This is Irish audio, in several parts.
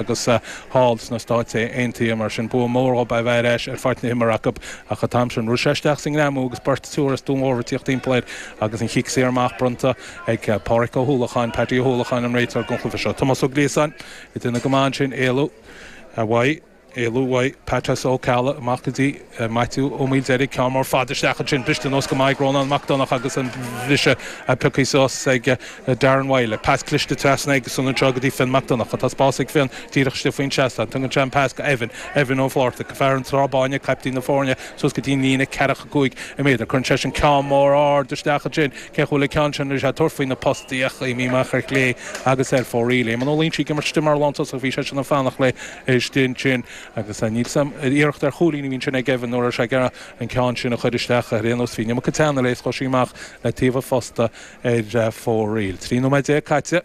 agus thall sna Stáit Aontaithe. Mar sin, bua mór dhóibh é bheith ar ais ar pháirc na himeartha acu. Ach an t-am sin, rith sé isteach sa ngreamú agus beirt triúr as Dún Mór ag tíocht timpeall air agus an cic saor amach bronnta ag Páraic Ó hUallacháin, Paddy Ó hUallacháin an réiteoir don chluiche seo. Tomás Ó Gliasáin ag déanamh go maith ansin, éalú uaidh, éalú uaidh Paitsí Ó Ceallaigh amach go dtí. Maitiú Ó Maoildheirg, ceann mór fada isteach ansin. Briste anuas go maith ag Rónán Mac Donnacha agus an briseadh pioctha suas ag Darren Wylie. Pas cliste trasna aigesan anseo go dtí Fionn Mac Donnacha. Tá spás ag Fionn díreach istigh faoin seastán. Tugann sé an pas go Evan. Evan Ó Flaitheartaigh, fear an Trá Bháin, caiptín na foirne, suas go dtí an líne ceathracha cúig méadar. Cuireann seisean ceann mór ard isteach ansin. Cé a bhuafas an ceann sin? Bhí sé ag tabhairt faoi na postaí ach imíonn sí amach ar chlé agus ar fóraoil. Eamonn Ó Loingsigh ag imirt istigh mar lántosaach. Bhí seisean ag fanacht léi istigh ansin. Agus níl sam. Iarracht ar chúilín a bhí ansin ag Evan, nó an raibh sé ag iarraidh an ceann sin a chur isteach ar aon nós. Bhí Nimmo Katana scoth sí amach le taobh an phosta ar fóraoil. Trí nóiméad déag caite,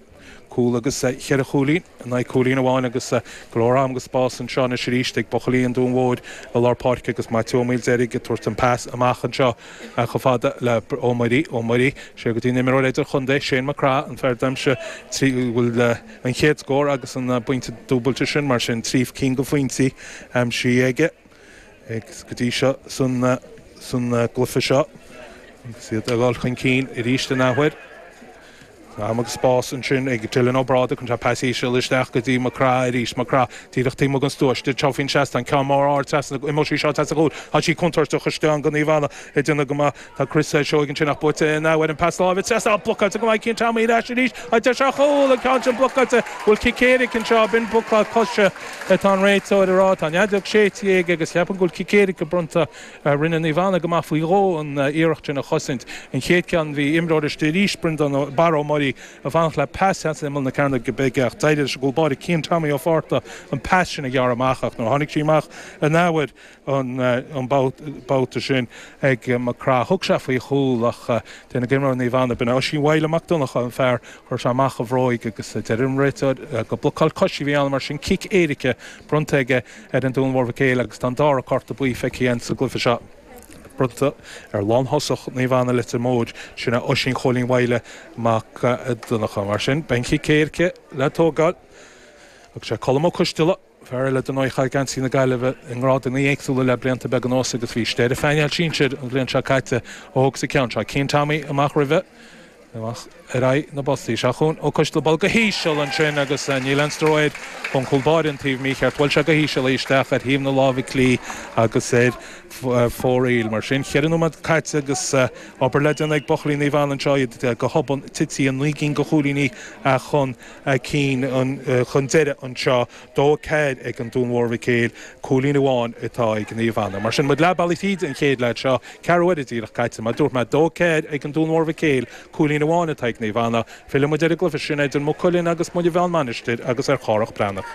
cúl agus cheithre chúilín in aghaidh cúilín amháin agus go leor ama agus spás anseo anois arís ag buachaillí an Dúin Mhóir i lár páirce agus Maitiú Ó Maoildheirg ag tabhairt an pas amach anseo chomh fada le Ó Muirí. Ó Muirí siar go dtí an imreoir idir-chontae, Shane McGrath, an fear d'aimsigh trí chúl. an chéad scór agus an pointe dúbailte sin, mar sin trí cinn de phointí aimsithe aige go dtí seo san gcluiche seo agus iad ag dul chun cinn arís an athuair. Tá am agus spás ansin ag Dylan Ó Brádaigh chun pas íseal isteach go dtí Mac Craith arís. Mac Craith díreach taobh amuigh den stua, isteach anseo faoin seastán, ceann mór ard trasna, imeoidh sí seo trasna go cúl, tá sí contúirteach, cosantóirí Naomh Anna ag déanamh go maith, Tá Chris Seoighe ansin ach buaite in athuair. Pas láimhe trasna blocáilte go maith ag Cian Tommy ar ais arís ag déanamh ar chúl, an ceann sin blocáilte. An bhfuil cic éiric anseo? B'in blocáil coise atá an réiteoir a rá. Tá an fheadóg séidte aige agus cheapfainn go bhfuil cic éirice bronnta. Rinne Naomh Anna go maith faoi dhó an iarracht sin a chosaint. An chéad ceann bhí imreoir istigh arís, Breandán Barra Ó Muirí, ag fanacht le pas ar imeall na Cearnóige Bige ach d'éirigh leis an gcúl báire Cian Tommy Ó Fátharta an pas sin a ghearradh amach ach nuair a tháinig sí amach an athuair an babhta sin ag Mac Craith. Thug sé faoi chúl ach d'éirigh le imreoir Naomh Anna, b'in é Oisín Mhaidhle Mac Donnacha an fear, chuir sé amach a bhróg agus deir an réiteoir gur blocáil coise a bhí ann, mar sin cic éirice bronnta aige ar an Dún Mór Mhic Éil agus tá an dara cárta buí feicthe againn sa gcluiche seo bronnta ar lánthosach Naomh Anna, Leitir Móir, sin é Oisín Chóilín Mhaidhle Mac Donnacha. Mar sin, beidh an cic éirice le tógáil agus sé Colm Ó Coisteala, Fear eile den fhoireann a chaith geansaí na Gaillimhe i ngrádanna éagsúla le blianta beaga anuas agus bhí sé ar an bpainéal sinsir an bhliain seo caite a thógfas an ceann seo. Cian Tommy amach roimhe, amach ar aghaidh na bpostaí. Seo chugainn Ó Coisteala buailte go híseal ansin agus Ní Leinster Wade an cúl báire an taobh mícheart. Bhuail sé go híseal í isteach ar thaobh na láimhe clí agus ar fóraoil. Mar sin cheithre nóiméad caite agus obair le déanamh ag buachaillí Naomh Anna anseo. Iad go hobann tite naoi gcinn de chúilíní chun. a cinn chun deiridh anseo, dó a ceathair ag an Dún Mhór Mhic Éil, cúilín amháin atá ag Naomh Anna. Mar sin, muid leath bealaigh tríd an chéad leath seo, ceathrú uaire díreach caite. Mar dúirt mé, dó a ceathair ag an Dún Mhór Mhic Éil, cúilín amháin atá ag Naomh Anna. Filleann muid ar an gcluiche sin idir Maigh Cuilinn agus Muine Mheá-An Mhainistir agus ar Chárthach Breathnach.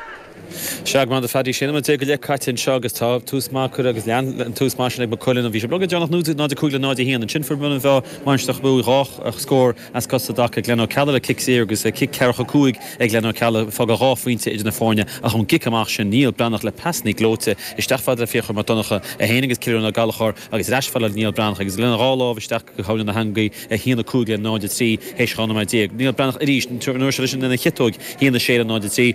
Seagmán de Phaddy Shéan am a deich go leith caite anseo agus tá tús maith curtha agus lean an tús maith sin ag Maigh Cuilinn. Bhí sé beag ag déanamh 0-5 le 0-1. Ansin fuair Muine Mheá Mainistir Chnoc Muaidh dhá scór as cosa i dtaca. Glen Ó Ceallaigh le cic saor agus cic ceathracha cúig ag Glen Ó Ceallaigh fágadh dhá phointe idir na foirne ach ón gcic amach sin Niall Breathnach le passannaí gleoite isteach fad le Fiachra Mac Donnacha 1 agus Cillian Ó Gallchóir agus ar ais fad le Niall Breathnach agus lena dhá lámh isteach go tóin na heangaí 1-5 le 0-3 théis 12 nóiméad. Niall Breathnach arís an uair seo leis an lena chiotóig 1-6 le 0-3.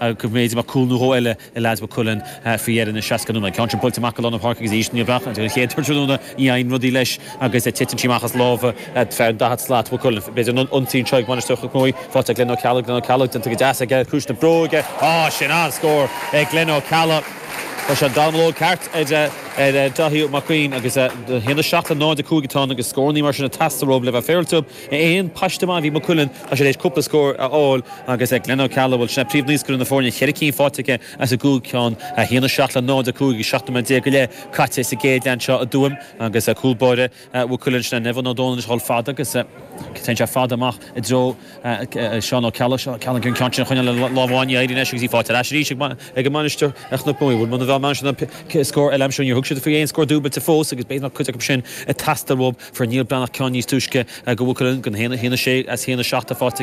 Ag méid a bheadh cúl nó dhó eile ag leaids Mhaigh Cuilinn faoi dheireadh na seasca nóiméad. Ceann sin buailte amach i lár an pháirc agus aois níor bheadh ag an chéad tráthnóna ní fhaigheann rudaí leis agus titeann sí amach as lámha fear an daichead slat. Maigh Cuilinn b'fhéidir an ionsaí anseo ag Mainistir Chnoc Muaidh. Faighte ag Glen Ó Ceallaigh. Glen Ó Ceallaigh déanta go deas aige ciumhais na bróige. Á, sin an-scór ag Glen Ó Ceallaigh. Chuir sé an dallamullóg ceart ar Daithí Ó Gaoithín agus 1:07 le 0:05 atá ann agus scórannaí mar sin ag teastáil uathu le bheith féaráilte. 1, Paiste maith a bhí i Maigh Cuilinn, tá sé tar éis cúpla scór a fháil agus ag Glen Ó Ceallaigh, bhuel, sin é príomhnaoscaire na foirne, ceithre cinn faighte aige as an gcúig cheann, 1, 7 le 0, 5, agus 17 nóiméad go leith caite sa gcéad leath anseo i dTuaim agus cúl báire Mhaigh Cuilinn, sin é Neven Ó Dónaill ag dhul fada agus téann sé fada amach i dtreo Seán Ó Ceallaigh, Seán Ó Ceallaigh an ceann sin a choinneáil le lámh amháin, ní éiríonn leis agus í faighte ar ais arís ag an Mainistir Chnoc Muaidh, bhuel Muine Mheá an scór eile aimsiú, níor thug siad faoi aon scór dúbailte fós agus b'fhéidir nach cuid acu sin a theastaíonn uathu. Fuair Niall Breathnach ceann níos túisce do Mhaigh Cuilinn gan haon, haon a sé as haon a seacht, faighte aige.